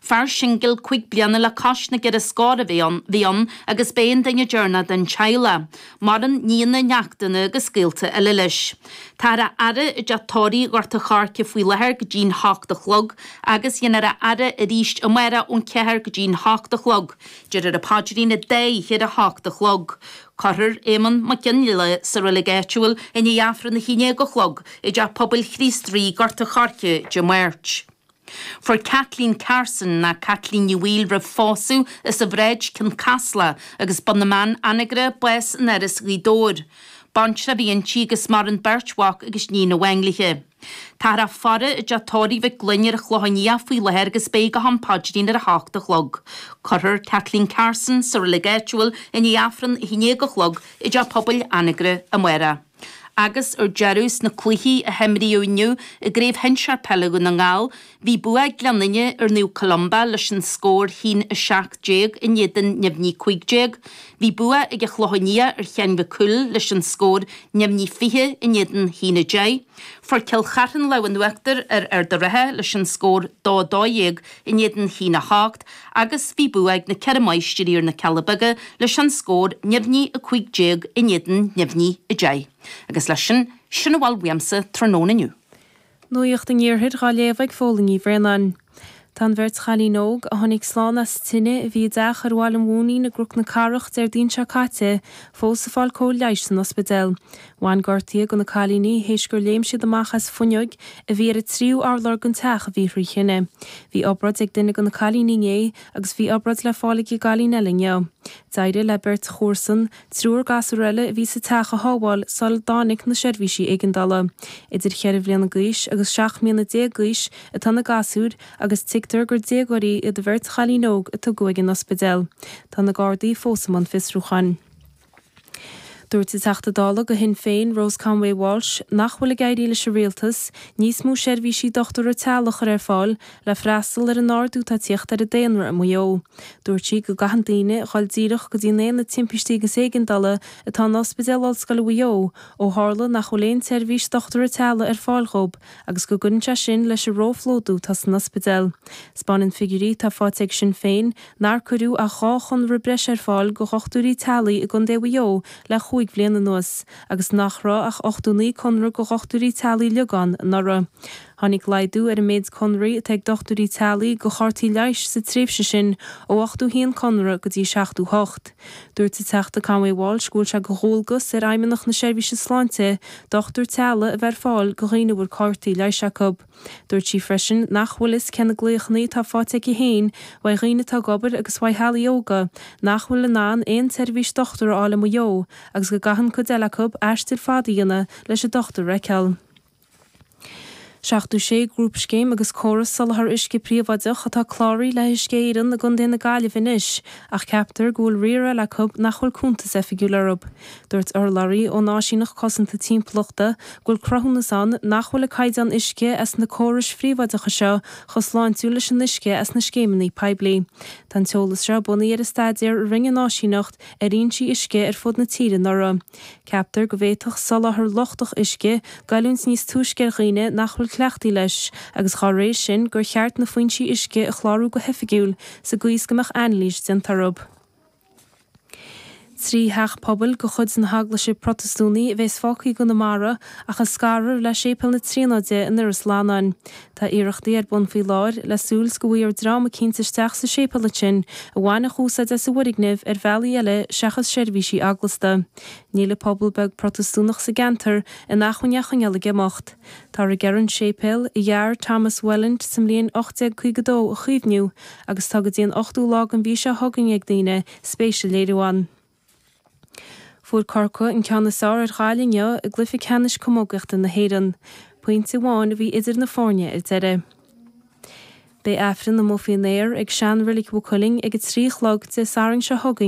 Fear singil cúig bliana le cois na gceithre scór a bhí ann agus b'é an duine deireanach den teaghlach. Maireann nianna, neachtanna agus gaolta eile leis. Táthar á fhaire i dteach tórraimh Ghort a Choirce faoi láthair go dtí'n hocht a chlog agus dhéanfar a fhaire aríst amáireach ón ceathair go dtí'n hocht a chlog. Déarfar a paidrín an dá oíche ar a hocht a chlog. Cuirfear Éamonn Mac Fhionnlaoich sa reilig áitiúil i ndiaidh Aifreann a haon déag a chlog i dteach pobail Chríost Rí Gort a Choirce Dé Máirt. Fuair Kathleen Carson nó Caitlín Ní Bhaoill roimh phósadh as an Bhráid, Cionn Caslach agus Bun na mBeann, Anagaire bás in Áras Ghaoth Dobhair. Baintreach a bhí inti agus maireann beirt mhac agus níon amháin léithe. Táthar á faire i dteach tórraimh Mhic Fhloinn ar an Chlochán Liath faoi láthair agus beidh go ham paidrín ar a h-ocht a chlog. Cuirfear Kathleen Carson sa reilig áitiúil i ndiaidh Aifreann a h-aon déag a chlog i dteach pobail Anagaire, amárach. Agus ar deireadh, sna cluichí a himríodh inniu i gCraobh Shinsear Peile Dhún na nGall, bhí bua ag Gleann Fhinne ar Naomh Columba leis an scór a haon 17 i n-éadan neamhní 15. Bhí bua ag an Chlochán Liath ar Sheán Mac Cumhaill leis an scór neamhní 20 i n-éadan a haon 10. Fuair Cill Chartha an lámh in uachtar ar Ard an Rátha leis an scór 2-12 i n-éadan a haon 8. Agus bhí bua ag na Ceithre Máistrí ar na Cealla Beaga leis an scór neamhní 15 i n-éadan neamhní 10. Agus leis sin, sin a bhfuil uaimse tráthnóna inniu. Nuacht an Iarthair dhá léamh ag Fódhla Ní Bhraonáin. Tá an bheirt chailín óg, a tháinig slán as a tine, a bhí i dteach ar Bhaile an Mhóinín i gCnoc na Cathrach, Déardaoin seo caite, fós ag fáil cóir leighis san ospidéal. Bhain gortuithe go na cailíní théis gur léim siad amach as fuinneoig a bhí ar a tríú urlár gon teach a bhí thrí thine. Bhí obráid ag duine go na cailíní inné agus bhí obráid le fáil ag a gcailín eile inniu. D'éirigh le beirt chomharsan triúr gasúr eile a bhí sa teach a shábháil sular dtáinic na seirbhísí éigeandála. Idir cheithre bhliana gaois agus seacht mbliana déag gaois atá na gasúir agus tuigtear gur déagóirí iad a bheirt chailín óg a tugadh ag an ospidéal. Tá na Gardaí fós i mbun fiosrúcháin. Dúirt an Teachta Dála go Shinn Féin, Rose Conway-Walsh, nach bhfuil ag éirí leis an Rialtas níos mó seirbhísí dochtúra teaghlaigh a chur ar fáil le freastal ar an ardú atá ag tíocht ar an daonra i Maigh Eo. Dúirt sí go gcaitheann daoine a dhul díreach go dtí an Aonad Timpistí agus Éigeandála atá in Ospidéal Ollscoile Mhaigh Eo ó tharla nach bhfuil aon tseirbhís dochtúra teaghlaigh ar fáil dhóib agus go gcuireann sé sin leis an ró-phlódú atá san ospidéal. 'Spáineann figiúirí atá faighte ag Sinn Féin nár cuireadh ach dhá chonradh breise ar fáil go dhochtúirí teaghlaigh i gContae Mhaigh Eo le chúig bhliain anuas, agus nach raibh ach 89 conradh go dhochtúirí teaghlaigh uiliog ann anuraidh. Tháinig laghdú ar an méid conraí atá ag dochtúirí teaghlaigh go chártaí leighis sa tréimhse sin ó ochtó haon conradh go dtí seachtó hocht. Dúirt an Teachta Conway Walsh go bhfuil sé go dhualgas ar Fheidhmeannacht na Seirbhíse Sláinte dochtúir teaghlaigh a bheith ar fáil do dhaoine a bhfuil cártaí leighis acub. Dúirt sí freisin nach bhfuil fhios cé na glaochanna atá fáite aici féin uaidh dhaoine atá ag obair agus uaidh theaghlaigh óga nach bhfuil in ann aon tseirbhís dochtúra a fháil i Maigh Eo agus go gcaitheann cuid eile acu aistir fada a dhéanamh leis an dochtúir a fheiceáil. 76 grúpscéim agus córas soláthar uisce príobháideach atá cláraithe le hUisce Éireann i gContae na Gaillimhe anois ach ceaptar go bhfuil riar eile acu nach bhfuil cuntas oifigiúil orthu. Dúirt urlabhraí ón Áisíneacht Cosanta Timpeallachta go bhfuil cruthúnas ann nach bhfuil an caighdeán uisce as na córais phríobháideacha seo chomh sláintiúil leis an uisce as na scéimeanna poiblí. Tá an t-eolas seo bunaithe ar an staidéar a rinne an Áisíneacht ar fhoinsí uisce ar fud na tíre anuraidh. Ceaptar go bhféadfadh soláthar lochtach uisce goilliúint níos túisce ar dhaoine nach bhfuil cleachtaithe leis agus dá réir sin gur cheart na foinsí uisce a chlárú go hoifigiúil sa gcaoi is go mbeadh anailís déanta orthu. Trí theach pobail de chuid na hEaglaise Protastúnaí a bheas fágtha i gConamara ach a scarfar le Séipéal na Tríonóide in Iorras Fhlannáin. Tá iarrachtaí ar bun faoi láthair le súil 's go bhfaighfear dream eicínt isteach sa séipéal ansin a bhainfeadh úsáid as an bhfoirgneamh ar bhealaí eile seachas seirbhísí eaglasta. Níl pobal beag Protastúnach sa gceantar in acmhainn é a choinneáil ag imeacht. Táthar ag iarraidh an séipéal, a dhear Thomas Welland sa mbliain 1852, a chaomhniú agus tá go dtí an 8ú lá den mhí seo chugainn ag daoine spéis a léiriú ann. Fuair Corcaigh an ceann is fearr ar Ghaillimh inniu i gcluiche ceannais camógaíochta na hÉireann. Pointe amháin a bhí idir na foirne ar deireadh. Beidh Aifreann amuigh faoin aer ag sean reilig Mhaigh Cuilinn ag a trí a chlog Dé Sathairn seo chugainn.